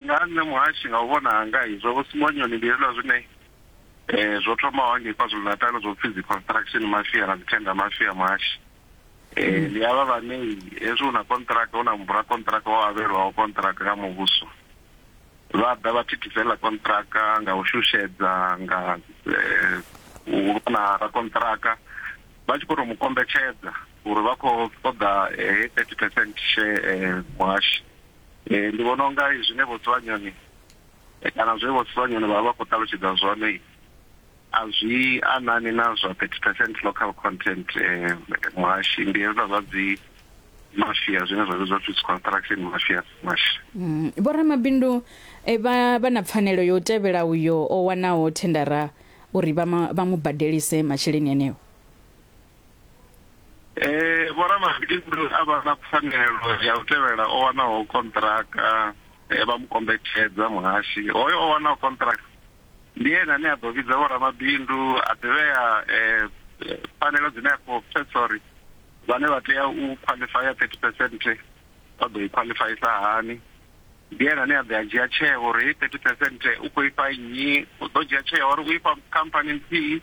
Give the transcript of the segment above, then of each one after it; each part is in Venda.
Nga ha nṋe Muhashi, nga u vhona hanga, zwa Vho Simonyoni ndi hezwiḽa zwine zwo thomaho hangei KwaZulu-Natal zwo pfi dzi construction mafia na dzi tender mafia Muhashi. Ndi havha vhane hezwi hu na konṱiraka, hu na mubulakonṱiraka o avhelwaho konṱiraka nga muvhuso, vha ḓa vha thithisa heiḽa konṱiraka nga u shushedza, nga u lwa na rakonṱiraka vha tshi khou tou mu kombetshedza uri vha khou ṱoḓa heyi thirty percent share Muhashi. Ee, ndi vhona unga zwine Vho Tsiwanyoni kana zwe Vho Tsiwanyoni vha vha vha khou ṱalutshedza zwone a zwi anani na zwa 30 percent local content muhashi, ndi hezwiḽa zwa dzi mafia zwine zwa vhidzwa upfi dzi construction mafia muhashi. Vho ramabindu vha vha na pfanelo ya u tevhela uyo o wanaho thendara uri vha mu badelise masheleni eneo? Eh vhoramabindu a vha na pfanelo ya u tevhela o wanaho konṱiraka eh, vha mu kombetshedza muhashi hoyo o wanaho konṱiraka ndi ene ane a ḓo vhidza vhoramabindu a ḓivhea eh, eh, pfanelo dzine a khou pfesa uri vhane vha tea u qualifya 30 percent vha ḓo i qualifyisa hani ndi ene ane a ḓo a dzhia tsheo uri 30 percent u khou ifha nnyi u ḓo dzhia tsheo uri u ifha khamphani nthihi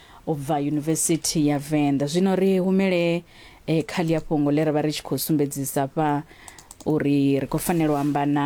u bva Yunivesithi ya Venḓa. Zwino ri humele eh, kha ḽia fhungo ḽe ra vha ri tshi khou sumbedzisa fha uri ri khou fanela u amba na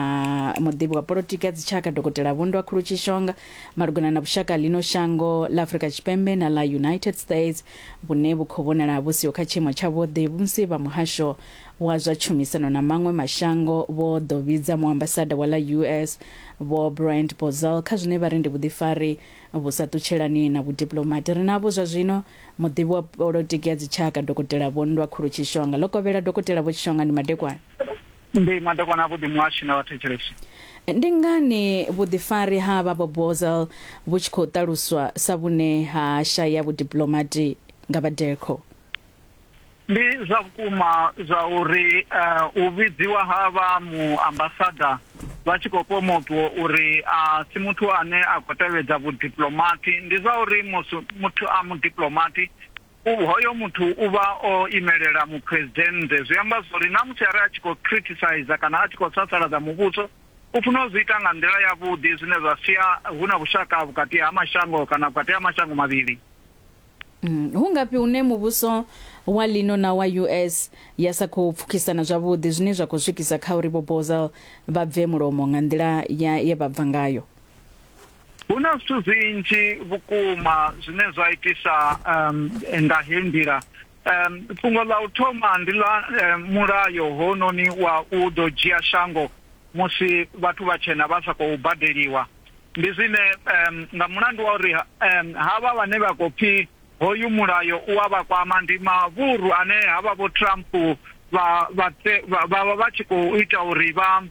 muḓivhi wa polotiki ya dzitshaka dokotela vhundwa khulu tshishonga malugana na vhushaka lino shango ḽa afurika tshipembe na ḽa united states vhune vhu khou vhonala vhu siho kha tshiimo tshavhuḓi musi vha muhasho wa zwa tshumisano na maṅwe mashango vho ḓo vhidza muambasada wa ḽa us vho brand bozel kha zwine vha ri ndi vhuḓifari Vhu sa ṱutshelani na vhudiplomati ri navho zwa zwino, muḓivhi wa polotiki ya dzitshaka Dokotela Vho Nndwa Khulu Tshishonga. Ḽo kovhela, Dokotela Vho Tshishonga ndi madekwana. Ndi madekwana a vhuḓi muhashi na vhathetshelesi. Ndi ngani vhuḓifari ha vha Vho Bozal vhu tshi khou ṱaluswa sa vhune ha shaya vhudiplomati nga vha Decro? Ndi zwa vhukuma zwa uri eh, u vhidziwa ha vha muambasada vha tshi khou pomotwa uri a si muthu ane a khou tevhedza vhudiplomati ndi zwa uri musi muthu a mudiplomati hoyo muthu u vha o imelela muphuresidennde zwi amba zwori na musi are a tshi khou criticize kana a tshi khou sasaladza muvhuso u funa u zwi ita nga nḓila yavhuḓi zwine zwa sia hu na vhushaka vhukati ha mashango kana vhukati ha mashango mavhili Mm, hu ngafhi hune muvhuso wa lino na wa US ya sa khou pfukisana zwavhuḓi zwine zwa khou swikisa kha uri vho Bozel vha bve mulomo nga nḓila ya ye vha bva ngayo? Hu na zwithu zwinzhi vhukuma zwine zwa itisa um, nga he nḓila um, fhungo ḽa u thoma ndi ḽa um, mulayo hononi wa u ḓo dzhia shango musi vhathu vhatshena vha sa khou badeliwa ndi zwine um, nga mulandu wa uri um, havha vhane vha khou pfi hoyu mulayo u a vha kwama ndi mavhuru ane havha vho Trump vha vha vha vha tshi khou ita uri vha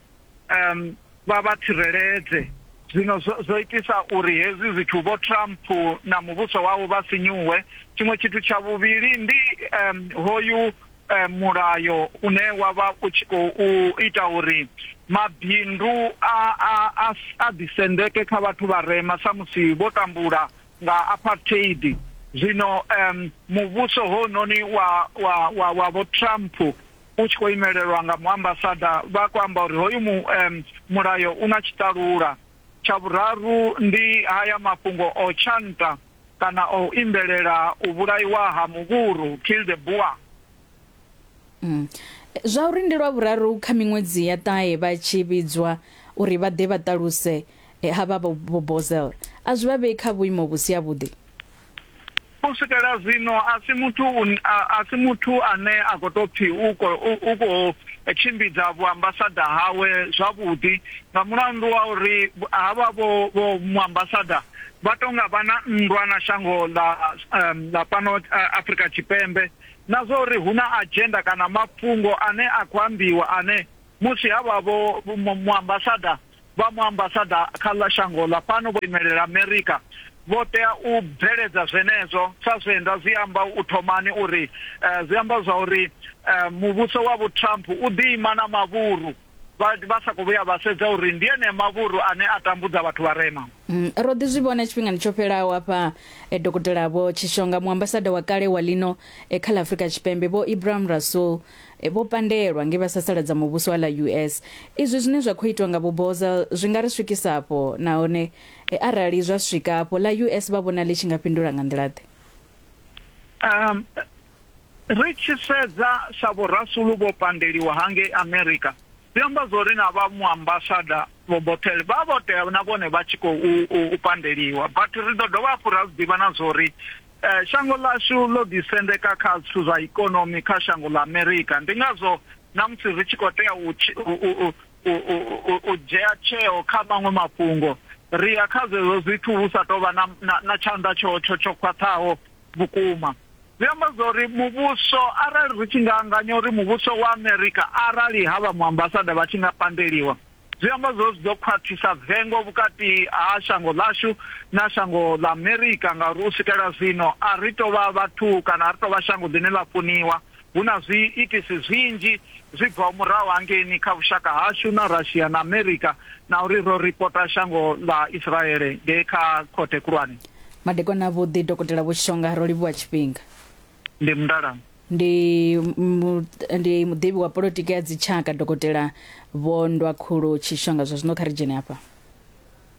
um, vha vha tsireledze zwino zwo itisa uri hezwi zwithu vho Trump na muvhuso wawo vha sinyuwe tshiṅwe tshithu tsha vhuvhili ndi um, hoyu eh, mulayo une wa vha u tshi khou ita uri mabindu a a a a ḓisendeke kha vhathu vha rema samusi vho tambula nga apartheid zwino um muvhuso hononi wa wa wa wa vho Trump u tshi khou imelelwa nga muambasada vha khou amba uri hoyu mu, um, mulayo una tshitalula tsha vhuraru ndi haya mafhungo o tshanta kana o imbelela u vhulaiwa ha muvhuru, kill the boer. Mm. Zwa uri ndi lwa vhuraru kha miṅwedzi ya ṱahe vha tshi vhidzwa uri vha ḓe vha ṱaluse eh, ha vha vho Bozel a zwi vha vhei kha vhuimo vhu si havhuḓi. u swikela zwino a si muthu a si muthu ane a khou tou pfhi u khou tshimbidza vhuambasada hawe zwavhuḓi nga mulandu wa uri havha vho muambasada vha tou nga vha na nndwa na shango ḽa ḽa fhano Afrika Tshipembe na zwa uri hu na adzhenda kana mafhungo ane a khou ambiwa ane musi ha vha vho muambasada vha muambasada kha ḽa shango ḽa fhano vho imelela Amerika vho tea u bveledza zwenezwo sa zwe nda zwi amba u thomani uri zwi amba zwa uri muvhuso wa vho Trump u ḓi ima na mavhuru vha vha sa khou vhuya vha sedza uri ndi ene mavhuru ane a tambudza vhathu vharema. Mm, ro ḓi zwi vhona tshifhingani tsho fhelaho hafha e dokotela vho Tshishonga muambasada wa kale wa lino e kha ḽa Afrika Tshipembe vho Ibrahim Rasool e vho pandelwa nge vha sasaladza muvhuso wa ḽa US. Izwi zwine zwa khou itwa nga vho Boza zwi nga ri swikisa afho nahone e, arali zwa swika afho ḽa US vha vhona ḽi tshi nga fhindula nga nḓila ḓe? Um, Ri tshi sedza sa vhorasulu vho pandeliwa ha ngei Amerika, zwi amba zwori na vha muambasada vho Bothel vha vho tea na vhone vha tshi khou u pandeliwa. But ri ḓo dovha hafhu ra zwi ḓivha na zwori shango ḽashu ḽo ḓi sendeka kha zwithu zwa ikonomi kha shango ḽa Amerika, ndi ngazwo na musi ri tshi khou tea u u dzhea tsheo kha maṅwe mafhungo, ri ya kha zwezwo zwithu hu sa tou vha na na na tshanḓa tsho tsho tsho khwaṱhaho vhukuma. Zwi amba zwa uri muvhuso arali ri tshi nga anganya uri muvhuso wa Amerika arali ha vha muambasada vha tshi nga pandeliwa zwi amba zwo zwi ḓo khwaṱhisa vengo vhukati ha shango ḽashu na shango ḽa Amerika ngauri u swikela zwino a ri tou vha vhathu kana a ri tou vha shango ḽine ḽa funiwa hu na zwiitisi zwinzhi zwi bvaho murahu hangeini kha vhushaka hashu na Russia na America na uri ro ripota shango ḽa Israele ngei kha khothe khulwane. Madekwana avhuḓi Dokotela Vho Shonga, ro livhuwa tshifhinga. Ndi Mndalana. Ndi mu, ndi muḓivhi wa polotiki ya dzitshaka Dokotela Vho Ndwakhulu Tshishonga. Zwa zwino kha ri dzhene hafha.